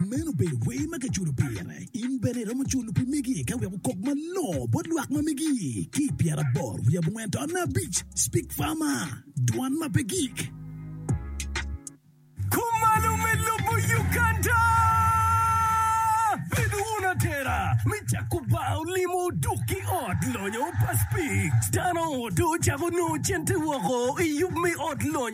Meno obedo wer ma kiculo pire. In bene iromo culo pi megi ka wek okok malongo bot lwak ma megi. Ki i pyeraboro wiye abongwen to nge abic, Speak Farmer, Dwan ma pe gik. Kumalo me lobo Uganda. Bedo wun atera me cako bar olimo dok ki ot lonyo pa Speak. Dano to cako nongo cente woko i yub me ot lonyo.